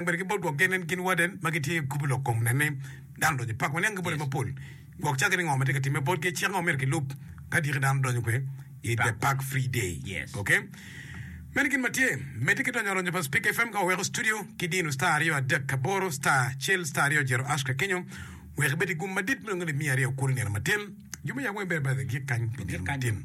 bedo ki bot gwok gen en gin waden ma gitye i gurup lok kom nen ni dano donyo i pak ma niang ki bote mapol gwok cake ni ngo ma tye ka timme botgi cik ango ma myero gilub ka dyeki dano donyo kwe i the park free day ok meno gin ma tye medde ki donyo aronyo pa speaker fm ka waweko studio ki dino star aryo adek aboro star acel star aryo jero ash ka kenyo wek ibed i gum madit me nongo limiya aryo kulu nino matin jo me yabo weng bene bade gik kany pi nino matin.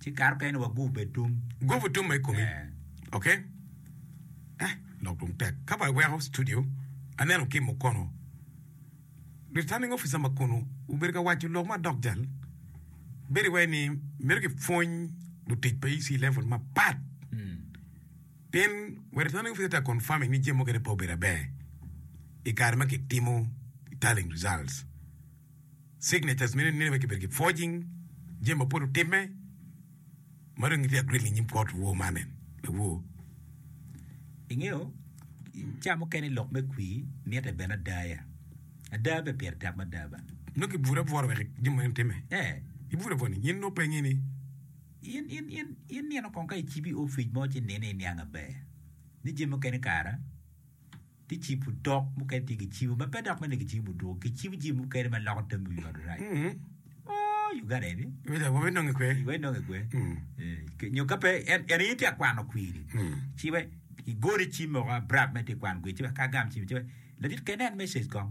Ci kato kene wa gup bed tum. Gupu tum ma i komi. Eh. Oke. Eh, lok dong tek. Ka ba iweko studio, aneno ki i mukono Returning Officer ma kunu obedo ka waco lok ma dok jal. Bedo iwaci ni myero kipwony lutic pa EC level mapat. Pien wa Returning Officer tye ka confirming ni jami mukene pe obedo aber i kare ma kitimo tallying results. Signatures meno nene wek kibedo ki forging jami mapol otimme ma dong gitye agreed inyim kot woo man en lawoo. Ingeyo ca mukene lok me kwi mite bene adaya ada be pire tek mada ba. Nongo ki bura bworo wek jami meno timme. Eh. Ibura bworo ni in opengi ni. In in in in nino kong ka icibi ofic mo ci nini iniang aber ni jami mukene kara. Gicibo dok mukene tye gicibo ma pe dok mene gicibo dwogo. Gicibo jami mukene ma loko tammi wi ot orac. Oh, Uganda eni. Wida, wabe nonge kwe. Iwe inonge kwe. Eh, ke- Nyo ka pe en en in tye akwano kwiri. Ci we igoni cim moko abrap me tye kwano kwiri. Ci we ka gam cim ci we. Ladit kene en message kong.